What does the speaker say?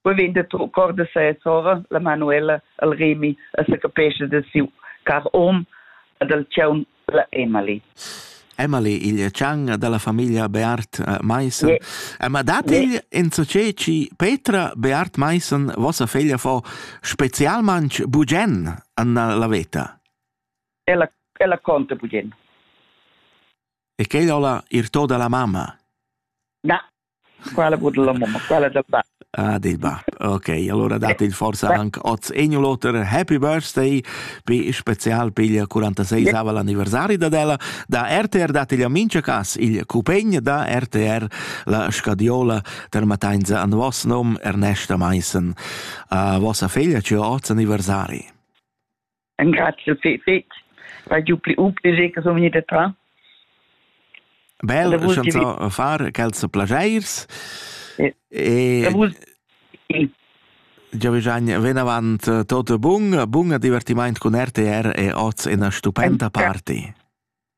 Poi vegn da cor da sa sora, la Manuela, el Remi, e se capesce da siu car hom e dal tgau la Emily. Emily, il chang dalla famiglia Beat eh, Meissen. Yeah. Eh, ma dat yeah. il in ci Petra Beat Meissen vossa figlia fa specialmanch bugen an la veta? Ella ella conta bugen. E che la ir to dalla mamma? Na, Quella vul la mamma, quella dal bab. Ah, del bab. Ok, allora date il forza anche oz egno l'oter. Happy birthday, pi special pigl 46 yeah. l'anniversari da della da RTR date gli amici cas il cupegn da RTR la scadiola ter matainza an vos nom Ernesta Meissen. A vossa figlia ci oz anniversari. Engrazio fetg. Vai giu pli up che che sono vegnida tra. Bel chanzon far quels plagiers. E Già bisogna ven avant eh, tutto bun, bun divertimento con RTR e oz una stupenda party.